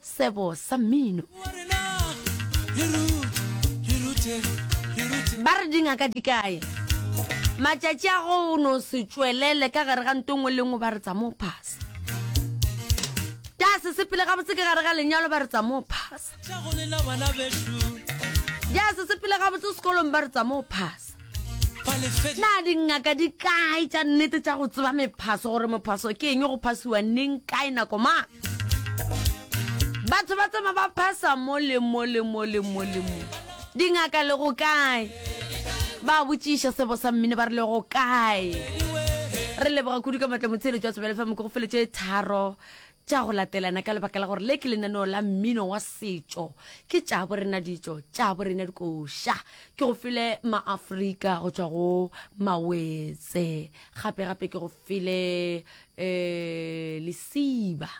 sebo sa mmino ba re dingaka di kae matšatši a go o no se tšwelele ka gare ga nto nngwe le nngwe ba re tsa mo phasa jase sepele gabotse ke gare ga lenyalo ba re tsa mo phasa jase sepele gabotse sekolong ba re tsa mo phasa na dingaka di kae tša nnete tša go tseba mephaso gore mophaso ke eng go phasiwa neng kae nako mang batho ba tsama ba phasa mo le mo le mo le mo le mo dingaka le go kae ba botšiša sebo sa mmine ba re le go kae re leboga kudu ka matla motsheletso wa tsebele fa moko go feletše tharo tša go latelana ka lebaka la gore le ke lenaneo la mmino wa setšo ke tša bo rena ditšo tša bo rena dikoša ke go file maafrika go tšwa go mawetse gape gape ke go file um lesiba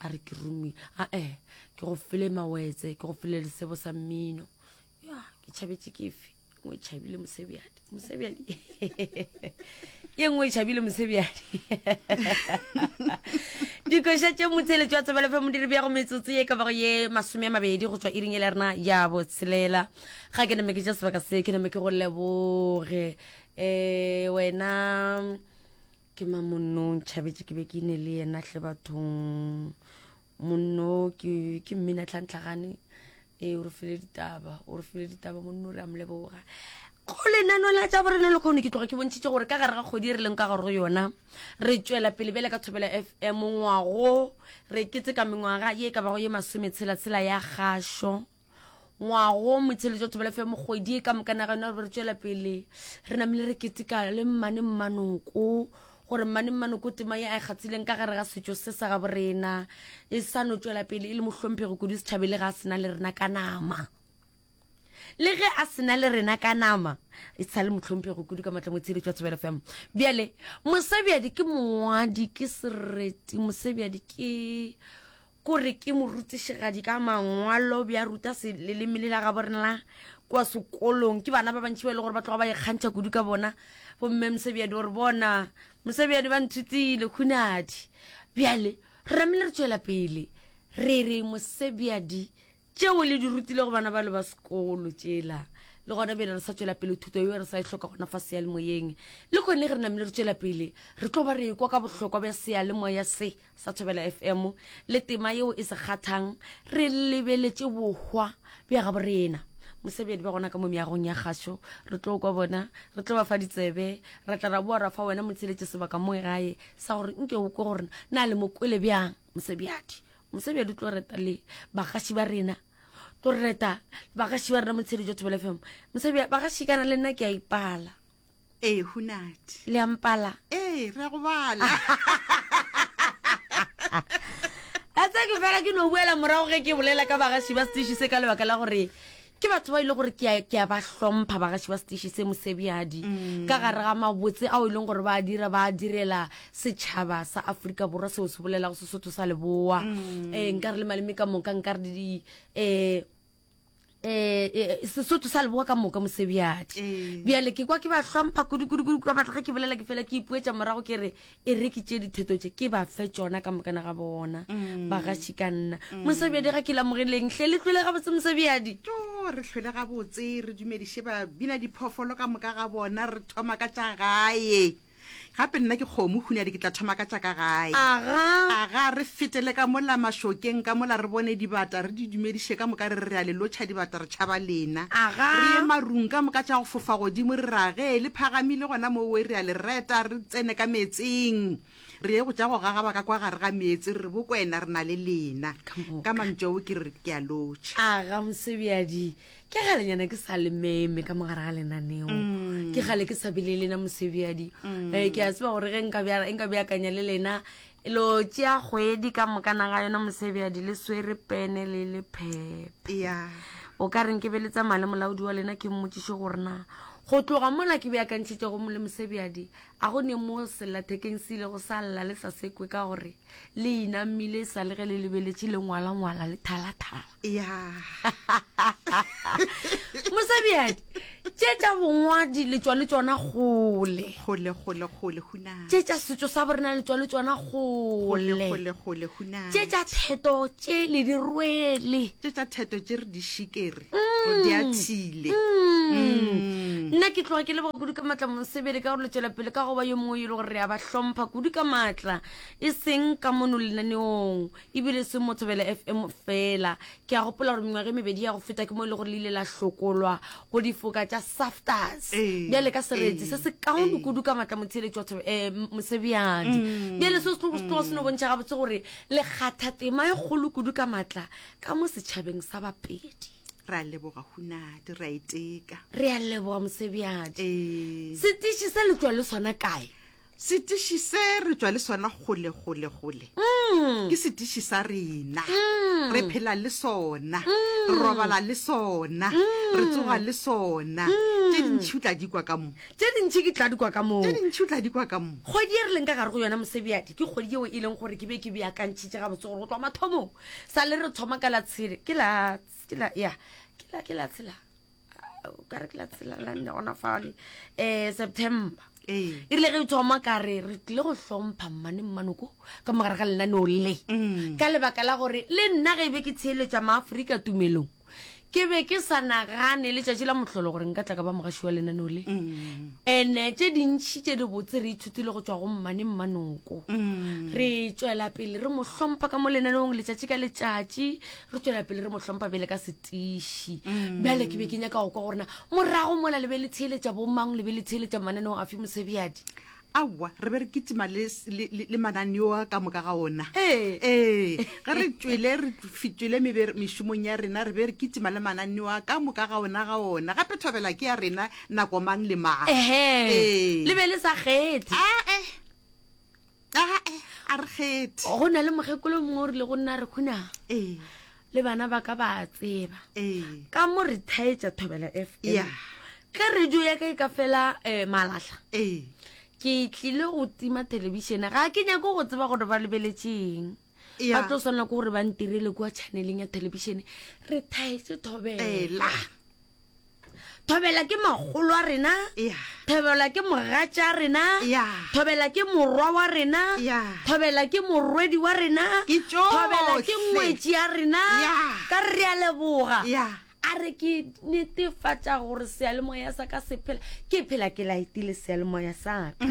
a re ke rumi ae ke go file mawetse ke go file lesebo sa mmino ya ke tšhabetše kefe nngwe tšhabile mosebjadi mosebjadi ye nngwe tšhabile mosebjadi dikoša tše motseletso wa tsebelefe modiri bja go metsotso ye ka bago ye masome a mabedi go tswa iring e le rena ya botshelela ga ke name ke ja sebaka se ke name ke go leboge um wena ke mamonnong tšhabetse ke be ke ne le yena hle bathong monno ke ke mmina tlhantlhagane e o re file ditaba o re file ditaba monno re a moleboga go lenano la tsa borena le kgone ke tloga ke bontšhitše gore ka gare ga kgodi e re leng ka gare go yona re tšwela pele bjale ka thobela f m ngwago re ketse ka mengwaga ye ka bago ye masometshela tshela ya gašo ngwago moitsheletso wa thobela fe mogwedi e ka moka naga yona re tšwela pele re namile re ketika le mmane mmanoko gore mmane mmanoko tema ye a e kgathileng ka gare ga setšo se sa gabo rena e sa no tšwela pele e le mohlomphego kudu setšhabe le ga a sena le rena ka nama le ge a sena le rena ka nama e sa le mohlomphego kudu ka matla moitsheletso wa thobela fm bjale mosebjadi ke mongwadi ke sereti mosebjadi ke Ko re ke morutišigadi ka mangwalo bja ruta se leleme le la gabo rena la kwa sekolong ke bana ba bantši ba e le gore ba tloga ba ikgantšha kudu ka bona bomme mosebjadi gore bona mosebjadi ba nthutile khunadi bjale re ramile re tšwela pele re re mosebjadi tšeo le di rutilego bana ba le ba sekolo tšela le gona bjale re sa tšwela pele thuto yo re sa e hloka gona fa seyalemoyeng le kgone ge re namele re tšwela pele re tlo ba re ekwa ka bohlokwa bja seyalemoya se sa thobela fm le tema yeo e se kgathang re lebeletše bohwa bja gabo rena mosebjadi ba gona ka mo meagong ya kgašo re tlo kwa bona re tlo ba fa ditsebe ra tla ra boa ra fa wena motsheletše sebaka mo gae sa gore nke o ko gore na le mo kwele bjang mosebjadi mosebja di tlo reta le bagaši ba rena tlo reta bagaši ba rena motshedi jo thobele fm mosebja bagaši kana le nna ke a ipala ee hunati le ampala ee re go bala a tse ke fela ke no buela morago ge ke bolela ka bagaši ba setiši se ka lebaka la gore ke batho ba e le gore ke a- ke a ba hlompha bagaši ba setiši se mosebjadi ka gare ga mabotse ao e leng gore ba a dira ba a direla setšhaba sa aforika borwa seo se bolelago sesotho sa leboa um nka re le maleme ka moka nka re di um eh eh, sesotho sa leboa ka moka mosebjadi Ee. bjale ke kwa ke ba hlompha kudukudukudu ka batla ge ke bolela ke fela ke ipuetša morago ke re e re ke tše ditheto tše ke ba fe tšona ka mokana ga bona mm. ba gaši ka nna mm. mosebjadi ga ke lamogeleng hle le tlhole gabotse mosebjadi re tlhole gabotse re dumediše ba bina diphoofolo ka moka ga bona re thoma ka tša gae gape nna ke kgomo hunadi ke tla thoma ka tša ka gae aga re fetele ka mola mašokeng ka mola re bone dibata re di dumediše ka moka re re a le lotšha dibata re tša ba lena. Aga. Re ye marung ka moka tša go fofa godimo, re ra ge le phagamile gona moo we, re a le reta, re tsene ka meetseng, re ye go tša go gagaba ka kwa gare ga meetse, re re Bokwena re na le lena. Ka moka. Ka mantšu ao ke re ke a lotšha. Aga, Mosebjadi, ke galenyana ke sa le meme ka mogare ga lenaneo. Ke gale ke sa be le lena, Mosebjadi. Ee, ke a tseba gore ge nka bea, nka beakanya le lena, Elo tšea kgwedi ka mokana ga yona mosebjadi le swere pene le le phepe. Yeah. O ka reng ke be le tsamaya le molaodi wa lena ke mmotšiše gore na go tloga mola ke beakantšhitše go le mosebjadi a go ne mo sellathekeng se ile go sa lla le sa sekwe ka gore le inamile e sa le ge le lebeletše lengwalangwala le thalathala. ya mosadiadi tše tša bongwadi le tswa le tsona gole gole gole gole huna tše tša setso sa borena le tswa le tsona gole gole gole huna tše tša theto tše le di rwele tše tša theto tše re di šikere mm. di athile mm. mm. nna ke tloga ke le boga kudu ka maatla mosebele ka gore le tswela pele ka go ba yo mongwe e le gore re a ba hlompha kudu ka maatla e seng ka mono lenaneong ebile e seng mo thobela fm fela ke a gopola gore mengwage mebedi ya go feta ke mo e le gore le ile la hlokolwa go difoka tša saftas Ee, bjale ka seretse ee, se se kaone ee. kudu ka matla motheeletši wa Thobe- eh, M- mosebjadi Mm. bjale seo se tlogo se tlogo se no bontšha gabotse gore le kgatha tema e kgolo kudu ka matla ka mo setšhabeng sa bapedi ra leboga hunadi ra e iteka re a leboga mosebjadi ee setiši se letswa le sona kae Setiši se re tšwa le sona kgole-kgole-kgole ke setiši sa rena. Re phela le sona, re robala le sona, re tsoga le sona. Tše dintši o tla di kwa ka mo. Tše dintši ke tla di kwa ka mo. Tše dintši o tla di kwa ka mo. Kgwedi ye re leng ka gare go yona Mosebjadi ke kgwedi yeo e leng gore ke be ke beakantšhitše gabotse gore go tloga mathomong sa le re thoma ka la tshele ke la ke la ya ke la ke la tshela ka re ke la tsela la nna gona fale um september e rile ge e thoma ka re re tlile go hlompha mmane mmanoko ka mogare ga lenaneo le mm. ka lebaka la gore le nna ge e be ke tsheeletša maaforika tumelong ke be ke sa nagane letšatši la motlholo gore nka tla ka ba mogaši wa lenaneo le mm. ene tše dintšhi tše dibotse re ithutile go tswa go mmane mmanoko mm. re tswela pele re mo hlompha ka mo lenaneong letšatši ka letšatši re tswela pele re mo tlhompha bele ka setiši mm. bjale ke be ke nyaka go kwa gorena morago mola le be le tsheeletša bomang le be le tsheeletša mananeo a fe mosebjadi aowa re be re ketima le mananeo a ka moka ga ona ee eh, ge re tswele re fetwele mešomong ya rena re be re ketima le mananeo a ka moka ga ona ga ona gape thobela ke ya rena nako mang le mang ee eh. le be le sa kgethe ae eh. Ae, a re kgethe. go na le mokgekolo mongwe o rile go nna re khuna Ee, le bana ba ka ba a tseba ee. ka mo re thaetša thobela fm Yeah. ge radio ya ka e ka fela um malahla Ee. ke tlile go tima thelebišene ga ke nyake go tseba gore ba lebeletšeng ba tlo swana ke gore ba ntirele kua channeleng ya thelebišene re thaetse thobela thobela ke magolo a rena thobela ke mogatša a rena thobela ke morwa wa rena thobela ke morwedi wa rena thobela ke ngwetši ya rena ka re a leboga A re, Ke netefatša gore seyalemoya sa ka se phela. Ke phela ke laetile seyalemoya sa ka.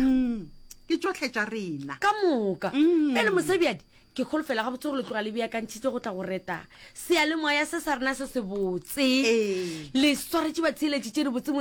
Ke tšohle tša rena. Ka moka. Bjale, mosebjadi, ke kholofela gabotse gore le tloga le beakantšhitše go tla go reta seyalemoya se sa rena se sebotse. Le swaretše batheeletši tše dibotse,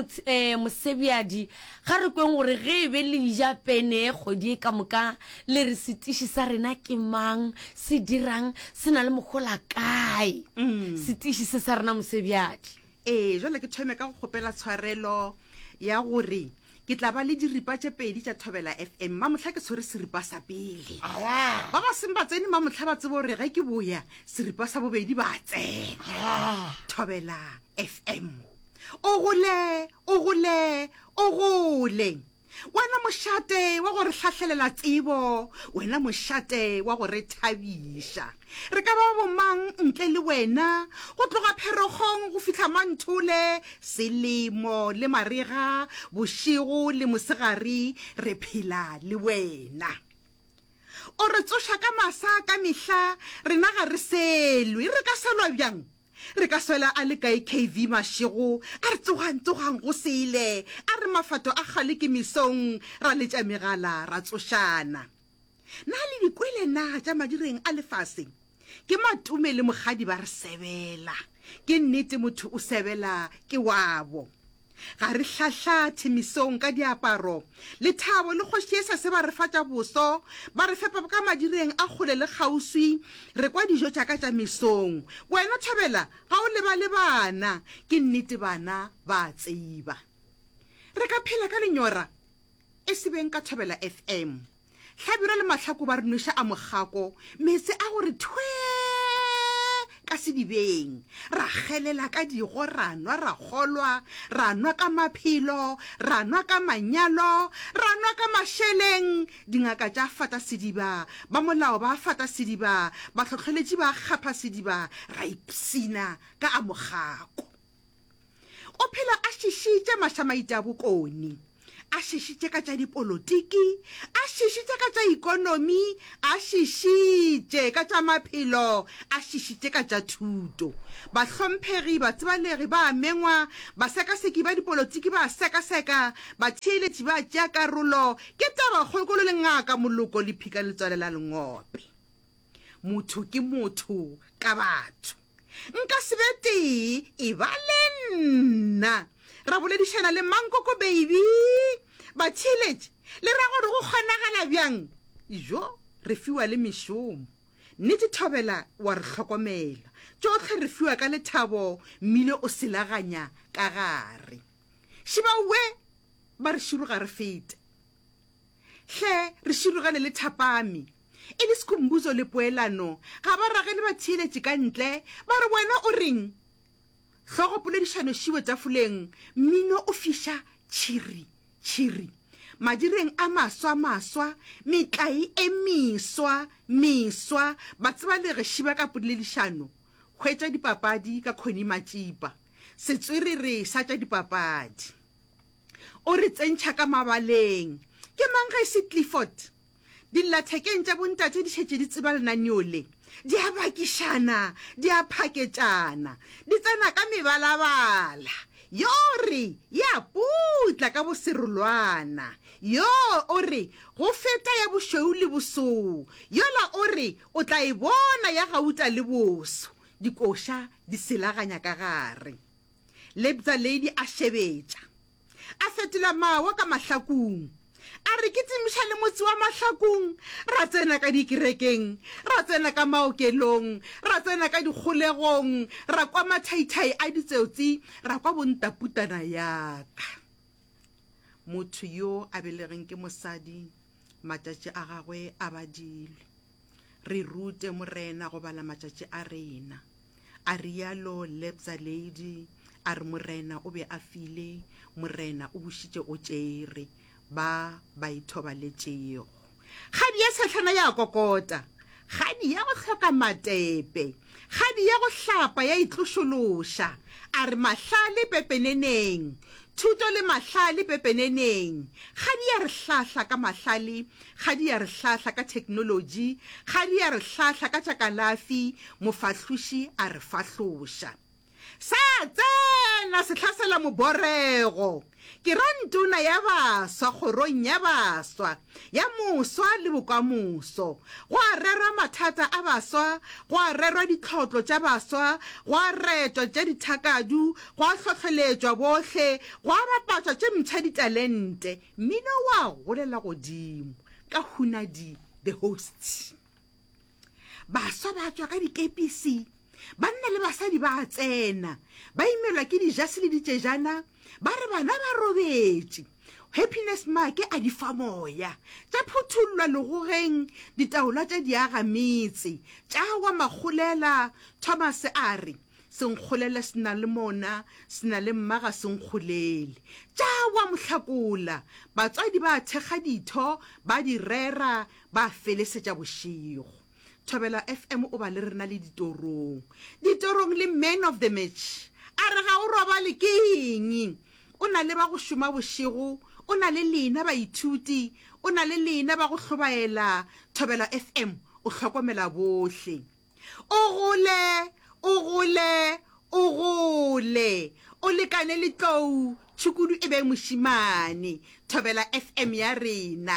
mosebjadi. Ga re kweng gore ge e be le ja pene kgwedi e ka moka, le re setiši sa rena ke mang, se dirang, se na le mohola kae. Setiši se sa rena Mosebjadi. Ee, jwale ke thome ka go kgopela tshwarelo ya gore ke tla ba le diripa tše pedi tša Thobela FM. Mamohla ke tshwere seripa sa pele. Ba ba seng ba tsene mamohla ba tsebe gore ge ke boya, seripa sa bobedi ba tsena. Thobela FM. O gole O gole, o gole. Wena mošate wa go re hlahlelela tsebo, wena mošate wa go re thabiša. Re ka ba bomang ntle le wena? Go tloga pherogong go fihla manthole, selemo le marega, bošego le mosegare, re phela le wena. O re tsoša ka masa ka mehla, rena ga re selwe. Re ka selwa bjang? Re ka swela a le kae KV mašego, a re tsogang, tsogang go sele, a re mafato a kgale ke mesong, ra letša megala, ra tsošana. Na le di kwele na tša madireng a lefase? Ke Matume le mokgadi ba re sebela. Ke nnete motho o sebela, ke wabo. Ga re hlahlathe mesong ka diaparo. Lethabo le Kgoši e sa se ba re fa tša boso, ba re fepa ka madireng a kgole le kgauswi, re kwa dijo tša ka tša mesong. Wena Thabela ga o lebale bana, ke nnete bana ba a tseba. Re ka phela ka lenyora e se beng ka Thobela FM. Hlabirwa le Mahlako ba re nweša a mogako, meetse a go re thwee ka sedibeng. Ra kgelela ka digo, ra nwa ra kgolwa, ra nwa ka maphelo, ra nwa ka manyalo, ra nwa ka mašeleng. Dingaka tša fata sediba, ba molao ba fata sediba, batlhohleletši ba kgapha sediba, ra ipshina ka a mogako. O phela a šišitše mašamaita a bokoni, a šišitše ka tša dipolotiki, a šišitše ka tša ikonomi, a šišitše ka tša maphelo, a šišitše ka tša thuto. Bahlomphegi, batsebalegi ba a mengwa, basekaseki ba dipolotiki ba a sekaseka, batheeletši ba a tšea karolo, ke tabakgokolo le ngaka moloko le phika letswale la lengope. motho ke motho ka batho nka sebe tee e ba le nna ra boledišana le mankoko baby ba tšhiletše le ra gore go kgonagala bjang jo re fiwa le mešomo nnete thobela wa re hlokomela tšotlhe re fiwa ka lethabo mmile o selaganya ka gare šiba we ba re širuga re fete hle re širugane le thapame E le Sikhumbuzo le Poelano ga ba ragele batheeletši ka ntle, ba re, Wena o reng? Hlogo poledišano šiwe tafoleng, mmino o fiša, tšhiri, tšhiri, madireng a maswa, maswa, metlai e meswa, meswa, batsebalegi šiba ka poledišano, hwetša dipapadi ka Connie Matšipa, setswerere sa tša dipapadi. O re tsentšha ka mabaleng. Ke mang ge e se Clifford? Dillathekeng tša bontate di šetše di tseba lenaneo le, di a bakišana, di a phaketšana, di tsena ka mebalabala. Yo o re, E a putla ka boserolwana. Yo o re, Go feta ya bošweu le bosoo. Yola o re, O tla e bona ya gauta le boso. Dikoša di selaganya ka gare. Lebza Lady a šebetša. a fetola mawa ka mahlakung, a re kitimiša le motse wa mahlakung, ra tsena ka dikerekeng, ra tsena ka maokelong, ra tsena ka dikgolegong, ra kwa mathaithai a ditsotsi, ra kwa bontaputana yaka. Motho yo a belegeng ke mosadi, matšatši a gagwe a badilwe. Re rute, Morena, go bala matšatši a rena. A rialo Lebza Lady, a re Morena o be a file, Morena o bušitše o tšere, ba ba ithobaletšego. Kgadi ya sehlana ya kokota, kgadi ya go hloka matepe. Kgadi ya go hlapa ya itlošološa, a re, Mahlale pepeneneng! Thuto le mahlale pepeneneng! Kgadi ya re hlahla ka mahlale, kgadi ya re hlahla ka theknolotši, kgadi ya re hlahla ka tša kalafi, mofahloši a re fahloša. Sa tsena sehlasela moborego. Ke ra ntona ya baswa kgorong ya baswa ya moswa le bokamoso. Go a rerwa mathata a baswa, go a rerwa ditlhotlo tša baswa, go a retwa tša dithakadu, go a hlohleletšwa bohle, go a bapatšwa tše mpsha ditalente. Mmino o a golela godimo ka Hunadi the Host. baswa ba tswa ka dikepisi banna le basadi ba tsena ba imelwa ke dijase le ditšejana ba re bana ba robetše happiness make a di fa moya tša phuthullwa legogeng ditaola tša diaga metse tša wa makgolela thomas a re Senkgolele se na le mona, se na le mma ga se nkgolele. Tša wa mohlakola! Batswadi ba thekga ditho, ba di rera, ba felesetša bošego. Thobela FM o ba le rena le ditorong. Ditorong le man of the match. A re ga o robale ke eng? O na le ba go šoma bošego, o na le lena baithuti, o na le lena ba go hlobaela. Thobela FM o hlokomela bohle. o gole o gole o gole o lekane le tlou tšhukudu e be mošimane thobela fm ya rena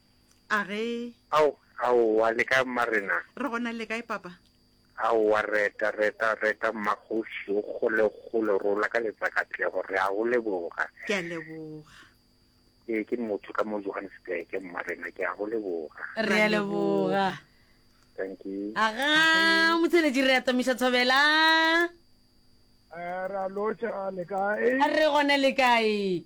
A ge. Ao, aowa, le kae Mmarena? Re gona, le kae Papa? Aowa, reta, reta, reta, Mmakgoši, o kgole, o kgole, rola ka letsakatlego, re a go leboga. Ke a leboga. Ee, ke motho ka mo Johannesburg, Mmarena, ke a go leboga. Re a leboga. Thank you. A ga, motsheletši, re atamiša thobela. A re a lotšha, le kae? A re gona, le kae?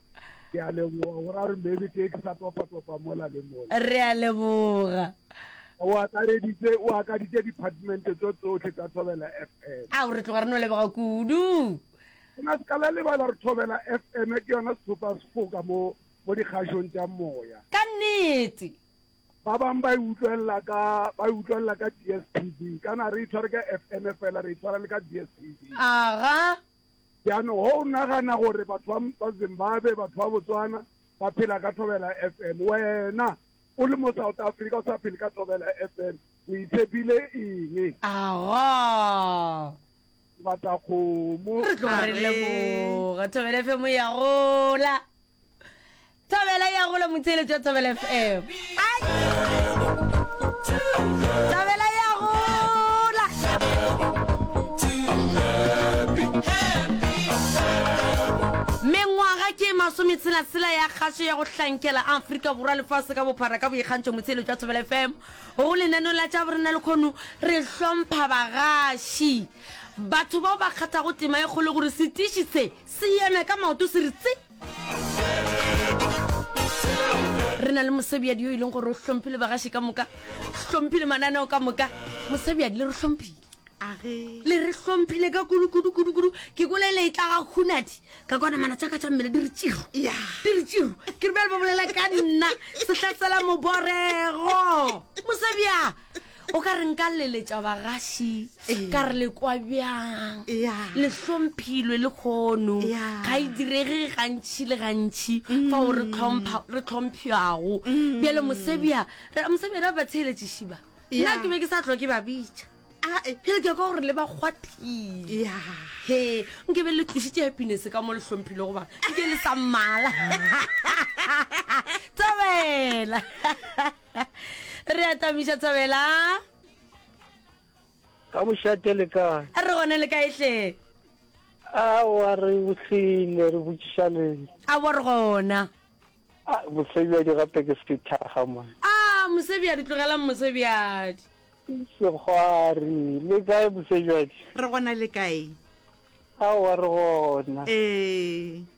ke a leboga go ra gore maybe ke ke sa topa-topa mola le mola re a leboga o akareditse o akaditse department tso tsotlhe tsa thobela f m a re tloga re no leboga kudu na se ka la lebala re thobela f m ke yona setlhopha sefoka mo mo dikgašong tša moya ka nnete ba bangwe ba e utlwelela ka ba e utlwelela ka d s t v kana re itshware ka f m fela re itshwara le ka d s t v aga Jaanong ho o nagana gore batho ba ba Zimbabwe, batho ba Botswana ba phela ka Thobela FM. Wena o le mo South Africa o sa phele ka Thobela FM, o itshepile eng? Ahaa. O batla kgomo. Re tloga re leboga Thobela FM ya gola. Thobela ya gola motheeletšo wa Thobela FM. Thobela ya gola. Mengwaga ke masometshela-tshela ya kgašo ya go hlankela Afrika Borwa lefase ka bophara ka boikgantšho motheeletšo wa Thobela FM. Go lenaneo la tša borena le kgono re hlompha bagaši batho bao ba kgathago tema e kgolo gore setiši se se eme ka maoto se re tse. re na le mosebjadi yo e leng gore o hlomphile bagaši ka moka hlomphile mananeo ka moka mosebjadi le re hlomphile le re hlomphile ka kudukudukudukudu ke kole le e tlaga hunadi ka kwana mana tsaka tsa mmele di re tiro di re tiro ke re bjale ba bolela ka nna sehlatsela moborego mosebja o ka re nka leletša bagaši ka re le kwa bjang le hlomphilwe le kgono ga e direge gantšhi le gantšhi fa o re tlhompha re tlhomphiwago bjale mosebja mosebja ra ba tsheletše šiba nna ke be ke sa tlwa ke ba bitša pele ke ka gore le ba kgwathile he nke be le tlositše happiness ka mo le hlomphile goba nke le sa mmala tsabela re atamiša tshabela ka mošate le kae a re gone le kae hle aowa re bohlile re botšiša leng a bo re gona Ah, mosebjadi gape ke sethaga ma a mosebjadi tlogelang mosebjadi segwari le kae mosebjadi re gona le kae aowa re gona ee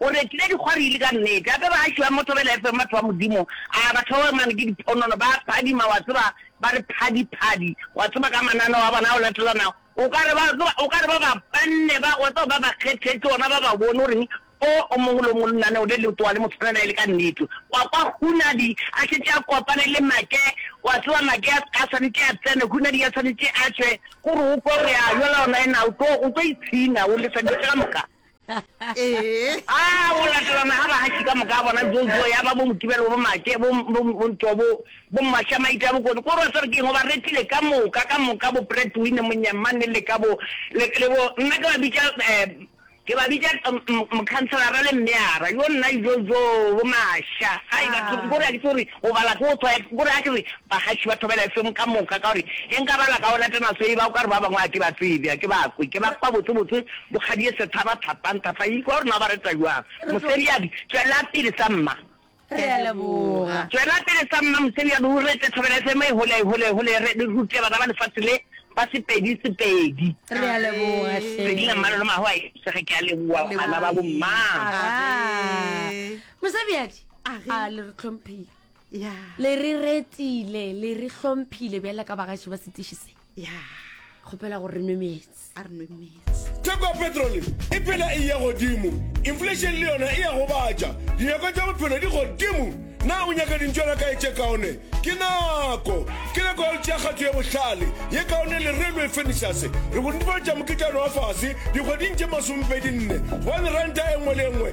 O retile dikgwarili ka nnete. Gape baaši ba Motobela FM batho ba Modimo. A ba theogemane ke diponono, ba phadima, wa tseba, ba re phadi-phadi, wa tseba, ka mananeo a bona a go latelanago. O ka re ba, o ka re ba ba banne ba, wa tseba, ba ba kgethetše, gona ba ba bone, o reng, O, o mongwe le o mongwe lenaneo le leotoa le mo tshwanela e le ka nnete. Wa kwa Hunadi a šetše a kopane le Make, wa tseba, Make a, a swanetše a tsene, Hunadi a swanetše a tšwe. Gore o kwe gore a yo la gona, enao tlo, o tlo ipshina, o lesa dilo tša ka moka. ee a o latela me ga bagatši ka moka bona jojo ya ba bo mokibelo bo make bo ntwa bo bo mmasha maita bokone ko re tsere ke eng ba retile ka moka ka moka bo pretwi ne monyamma ne le ka bo le le bo nna ke ba bitša eh ke ba bitša mokhanselara le mmeara yo nna jojo bo masha ai batho ko re ke tsore Go bala ke go thwaya, go raya ke gore Bagaši ba thobela FM ka moka, ka gore ge nka bala ka ona Tenaso e ba o ka re ba bangwe ga ke ba tsebe, ga ke ba kwe, ke ba kwa botsebotse, bokgadi ye sethaba, thapang, thapang, e ikwa gore na ba reta bjang. Mosebjadi, tšwela pele sa mma. Re a leboga. Tšwela pele sa mma Mosebjadi, o rete Thobela FM e hole, e hole, e hole, re rute bana ba lefase le ba Sepedi, Sepedi. Re a leboga hle. Sedila Mmalolo Mahoa e sege, ke a leboga bana ba bo mma. Agaa. mosabjadi a le re tlhomphile ya le re retile le re hlomphile bjala ka bagaši ba setiši se ya kgopela gore re nwe meetse a re nwe metse theko ya petrole e phela e ya godimo inflation le yona e ya gobatša dinyako tša bophelo di godimo na o nyaka dintšwana ka e tše kaone ke nako ke nako ya letšea kgatho ya bohlale ye kaone le railway furnitures re go netefatša moketšano wa fase dikgweding tše masomepedi nne gobane ranta e nngwe le e nngwe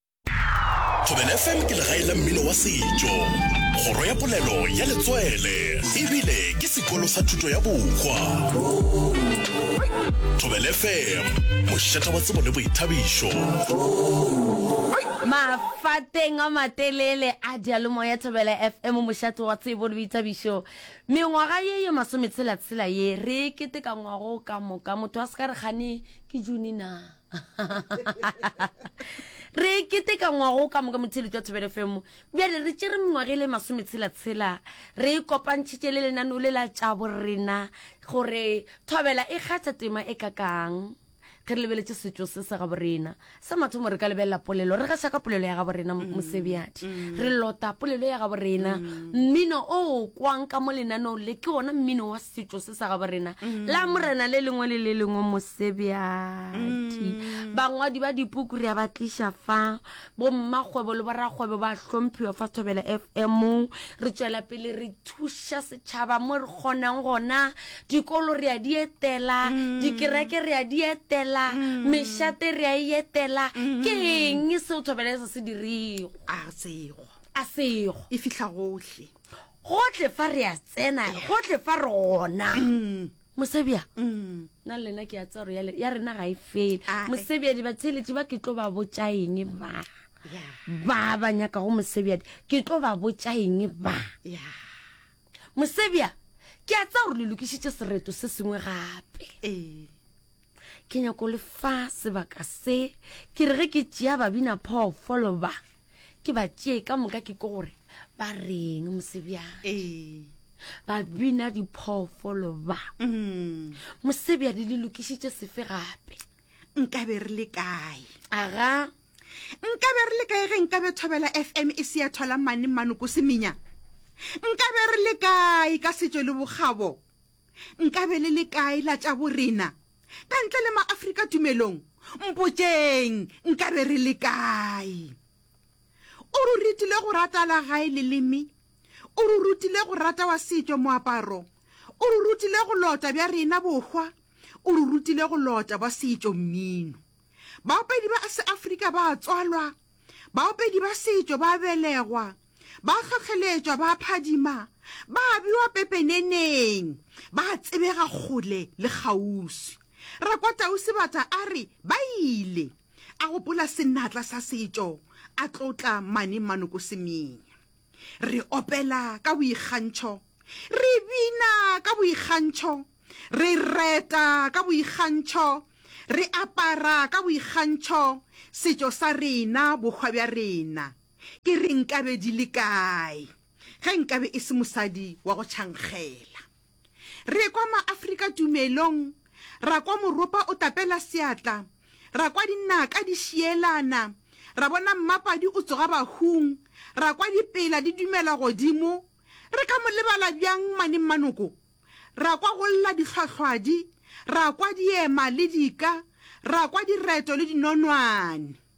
Thobela FM ke legae la mmino wa setšo, kgoro ya polelo ya letswele ebile ke sekolo sa thuto ya bohwa. Thobela FM, mošeta wa tsebo le boithabišo. mafateng a matelele a diyalemoya thobela fm mošate wa tsebo le boithabišo mengwaga ye ye masometshela-tshela ye re ketekangwago ka moka motho a se ka re kgane ke june na re keteka ngwago ka moka motheletši jwa thobele femo bjale re tšere mengwage le masometshela-tshela re e kopantšhitše le lenaneo le la tšabo rena gore thobela e kgatha tema e ka kang ge re lebeletše setšo se sa gabo rena sa mathomo re ka lebelela polelo re gasa ka polelo ya gabo rena mm, mosebjadi mm. re lota polelo ya gabo rena mm. mmino o o kwang ka mo lenaneong le ke ona mmino wa setšo se sa gabo rena la morena le lengwe le le lengwe mos sebjadi mm. bangwadi ba dipuku re a ba tliša fa bommakgwebo le borakgwebo ba hlomphiwa fa thobela fm re tswela pele re thuša setšhaba mo re kgonang gona dikolo re a di etela mm. dikereke re a di etela mm. mešate re a e etela ke eng seo thobela se se dirigo a sego a sego e fitlha gotlhe gotlhe fa re a tsena gotlhe fa re gona mosebja nna le lena ke a tsaro ya rena ga e fele mosebjadi batheletši ba ke tlo ba botša eng ba ba ba nyaka go mosebjadi ke tlo ba botša eng ba mosebja ke a tsaya gore le lokišitše sereto se sengwe gape ke nyako le fa sebaka se ke re ge ke tšea babina phoofolo ba ke ba tšee ka moka ke ko gore ba reng mosebjang ee. babina diphoofolo ba mm. mosebjadi le lokišitše sefe gape nkabe re le kae aga nkabe re le kae ge nkabe thobela fm e se ya thola mane manoko seminya nkabe re le kae ka setšo le bokgabo Nkabe le le kae la tša borena? Ka ntle le maAfrika tumelong? Mpotšeng, nkabe re le kae? O re rutile go rata la gae leleme, o re rutile go rata wa setšo moaparo, o re rutile go lota bja rena bohwa, o re rutile go lota bwa setšo mmino. Baopedi ba Seafrika ba tswalwa, baopedi ba setšo ba belegwa, Ba kgakgeletšwa, ba phadima, ba abiwa pepeneneng, ba tsebega kgole le kgauswi. Re kwa Tau Sebata a re ba ile, a gopola senatla sa setšo, a tlotla mane Manokosemenya. Re opela ka boikgantšho, re bina ka boikgantšho, re reta ka boikgantšho, re apara ka boikgantšho, setšo sa rena, bohwa bja rena. Ke re nkabe di le kae ge nkabe e se mosadi wa go tšhankgela. Re kwa maAfrika tumelong, ra kwa moropa o tapela seatla, ra kwa dinaka di šielana, ra bona mmapadi o tsoga bahung, ra kwa dipela di dumela godimo. Re ka mo lebala bjang Mmane Mmanoko? Ra kwa go lla dihlwahlwadi, ra kwa diema le dika, ra kwa direto le dinonwane.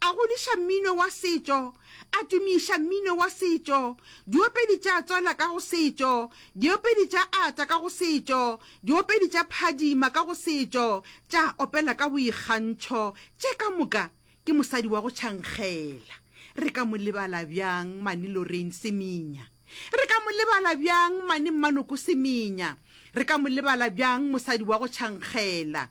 A godiša mmino wa setšo, a tumiša mmino wa setšo, diopedi tša tswela ka go setšo, diopedi tša ata ka go setšo, diopedi tša phadima ka go setšo, tša opela ka boikgantšho, tše ka moka ke mosadi wa go tšhankgela. Re ka mo lebala bjang Mani Lorraine Seminya? Re ka mo lebala bjang Mani Mmanoko Seminya? Re ka mo lebala bjang mosadi wa go tšhankgela?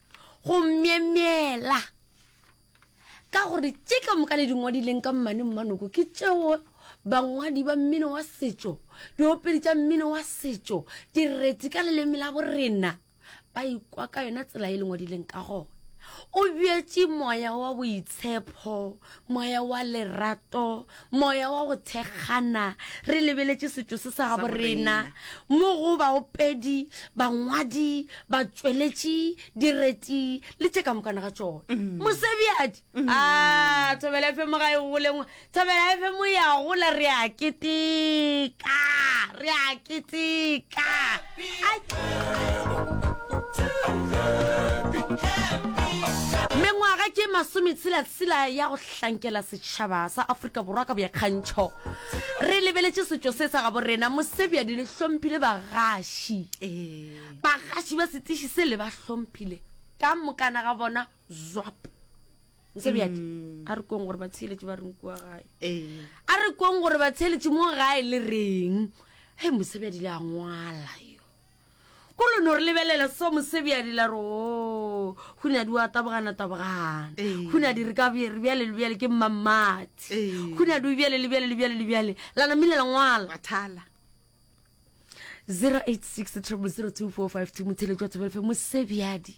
go myemyela ka gore tše ka moka le dingwadileng ka mmane mmanoko ke tšeo bangwadi ba mmino wa setšo diopedi tša mmino wa setšo diretsi ka leleme la borena ba ikwa ka yona tsela e lengwadileng ka gona o bjetše moya wa boitshepho moya wa lerato moya wa go thekgana re lebeletše setšo se sa gabo rena mo go baopedi bangwadi batšweletši direti le tše ka mokana ga tšone mm. mosebjadi mm. a ah, thobela efe mo ga e golengwa thobela efe mo ya gola re a keteka re a keteka mengwaga ke masometshela tshela ya go hlankela setšhaba sa Afrika Borwa ka boikgantšho. Re lebeletše setšo se sa gabo rena. Mosebjadi le hlomphile bagaši. Bagaši ba setiši se le ba hlomphile ka mokana ga bona zwap. Mosebjadi, mm. a re kong gore batsheeletši ba reng kua gae. A re kong gore batsheeletši mo gae le reng. He, Mosebjadi le a ngwala. ko lo no re lebelela so mosebjadi la re o go na di wa tabogana tabogana go na di re ka bjere bjale le bjale ke mmammathi go na di bjale le bjale le bjale le bjale la namile la ngwala bathala 086 00245 motheletši wa thobelefe mosebjadi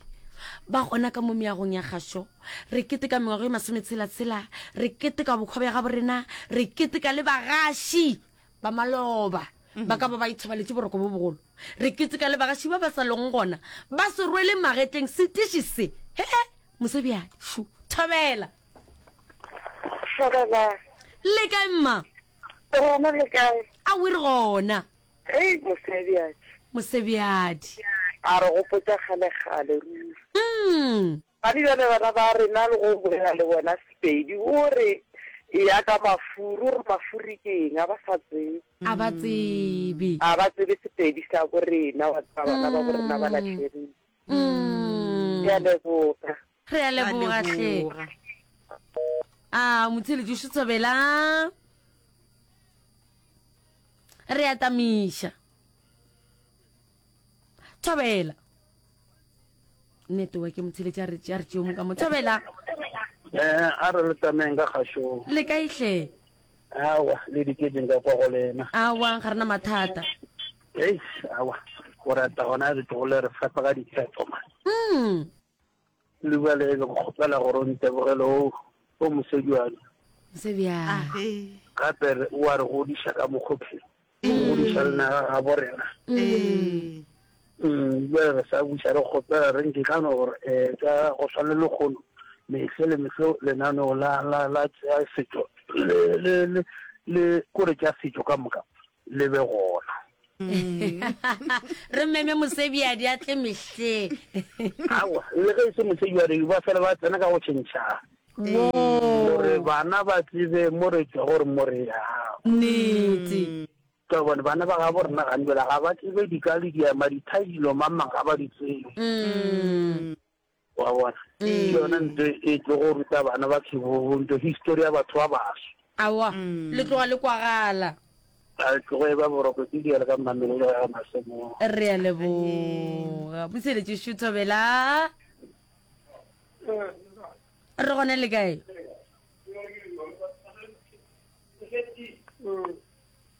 ba gona ka mo meagong ya gašo re kete ka mengwago e masometshela-tshela re kete ka bokgwa bja gabo rena re kete ka le bagaši ba maloba ba ka ba ba itshobaletse boroko bo bogolo re ketseka le bagaši ba ba sa leng gona ba se rwele magetleng setiši se he mosebjadi šu thabela Shebela, le kae mma gona le kae? a were gona Hei, mosebjadi. mosebjadi A re gopotsa kgale-kgale ruri. mm. Gane bjale bana ba re na le go bolela le bona Sepedi o re eya ka mafuri o re mafuri ke eng a ba sa tsebe. A ba tsebe. A ba tsebe Sepedi sa bo rena wa tseba bana ba bo rena ba lahlegile. Ke a leboga. Re a leboga hle. A motheletši se tshobela. Re atamiša. thobela network e motheletša re tšea re tšeo mo ka mo thobela eh a re le tsameng ka gašong le ka ihle awa le diketseng ka kwa go lena awa ga rena mathata ei awa o rata gona re tlogole re fepa ka ditshepo man mm. Leuba le re, Ke kgopela gore o ntebogele wo wo mosediwane. Mosediwane. Gape o a re godiša ka mokgopheng, o godiša le naga gabo rena. Jale re sa buša re kgopela re nke ka no gore ka go swana le kgono mehle le mehle lenaneo la la la tsa setšo le le le kore tša setšo ka moka le be gona re meme mosebjadi a tle mehleng awa le ge e se mosebjadi ba fela ba tsena ka go tšhentšha gore bana ba tsebe mo re tswa gore mo re yang nnete ka gobane bana ba ga bo rena gantsi bela ga ba tsebe dikale diema dithai dilo mang mang ga ba di tsebe mm. wa bona ke yona ntho e tlo go ruta bana ba khibogo ntho history ya batho ba baso awa le tloga le kwagala a tlogo e ba boroko ke diele ka mmamele le ga masemo re a leboga moseletše šuthobela re gone le kae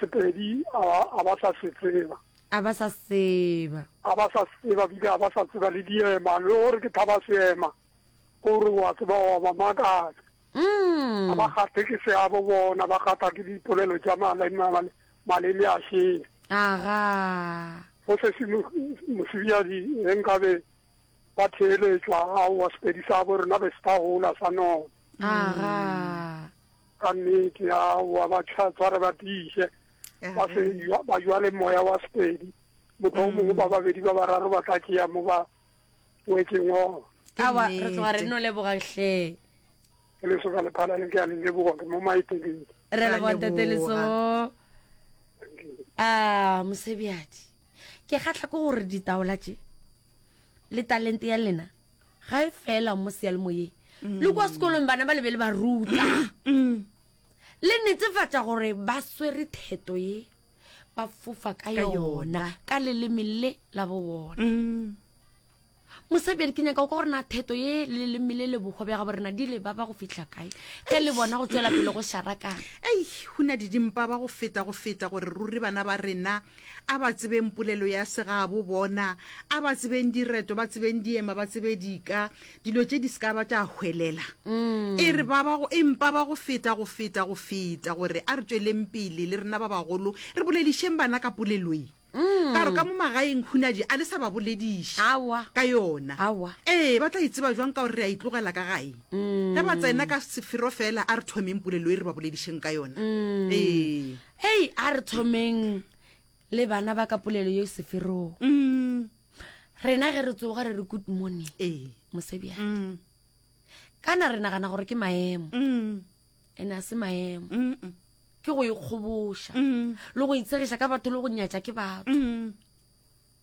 Sepedi, a, a ba sa se tseba. A ba sa tseba. A ba sa tseba, bile a ba sa tseba le diema. Le gore ke thaba seema, gore wa tseba wa ba makatsa. Mm. A ba kgathe ke seabo bona, ba kgatha ke dipolelo tša maleme a šele. Aga. Go se se mosebjadi ge nkabe ba theeletšwa ao wa sepedi sa bo rena be se tla gola sa nona. Aga. Ka nnete, aowa, ba tlhatsa re ba tiiše. Ba se ba jwa le moya wa sepedi. Motho o mongwe ba babedi ba bararo ba tla tšea mo ba boetseng ona. Aowa, re tloga re no leboga hle. Ke leso ka lephalaleng ke a le leboga ke mo maetebedi. Re leboga ntate leso. A mosebjadi ke kgatlha ke gore ditaola tše le talente ya lena gae fela mo seyalemoyeng mm. le kwa sekolong bana ba lebele ba ruta mm. le netefatša gore ba swere theto ye ba fofa ka yona ka leleme le la bo bona mm. mosebjadi ke nyaka o ka gore na theto ye le leleme le lebogo bja ga borena di le ba ba go fitlha kae ge le bona go tswela pele go šarakana ei go na didimpa ba go feta go feta gore ruri bana ba rena A ba tsebeng polelo ya segabo, bona, a ba tsebeng direto, ba tsebeng diema, ba tsebe dika, dilo tše di se ka ba tša hwelela. E re ba ba go, empa ba go feta, go feta, go feta, gore a re tšweleng pele, le rena ba bagolo, re boledišeng bana ka polelo ye. Ka gore ka mo magaeng, hunadi, a le sa ba bolediše Aowa. ka yona. Aowa. Ee, ba tla e tseba bjang ka gore re a e tlogela ka gae? Ge ba tsena ka sefero feela, a re thomeng polelo ye re ba boledišeng ka yona. Ee. Hei, a re thomeng le bana ba ka polelo yo seferong. Mm. Rena ge re tsoga re re good morning. Eh. Mosebjana. Mm. Kana re nagana gore ke maemo. Mm. Ene a se maemo. Mm -mm. Ke go ikgoboša. Mm. Le go itsegiša ka batho le go nyatša ke batho. Mm.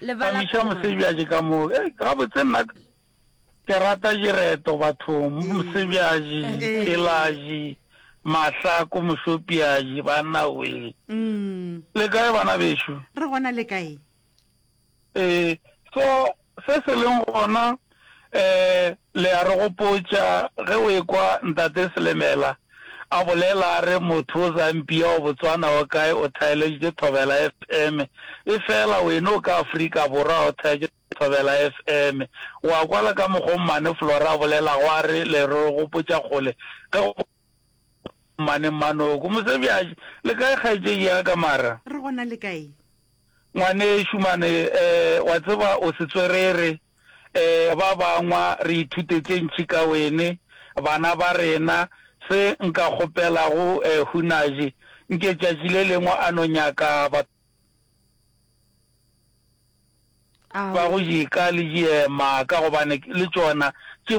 lebalaamiša mosebjadi ka moo e gabotse nna ke rata direto bathong mosebjadi kelaji mahlako mošopiadi banna we mm. le kae bana bešo re gona le kae ee so Se se leng gona, ee, le a re gopotša ge o ekwa Ntate Selemela a bolela a re motho o Zambia o Botswana o kae o thaeleditše Thobela FM, efela wene o ka Afrika Borwa ga o thaetše Thobela FM. Wa kwa le ka mokgo Mmane Flora a bolelago a re le re gopotša kgole ge go Mmane Mmanoko, Mosebjadi, le kae kgaetšedi ya ka mara? Re gona le kae? Ngwanešu mane eh, wa tseba o setswerere eh, ba bangwa re ithute tše ntši ka wene, bana ba rena, se nka kgopelago eh, Hunaji, nke tšatši le lengwe a no nyaka batho ba go jeka le diema ka gobane le tšona tše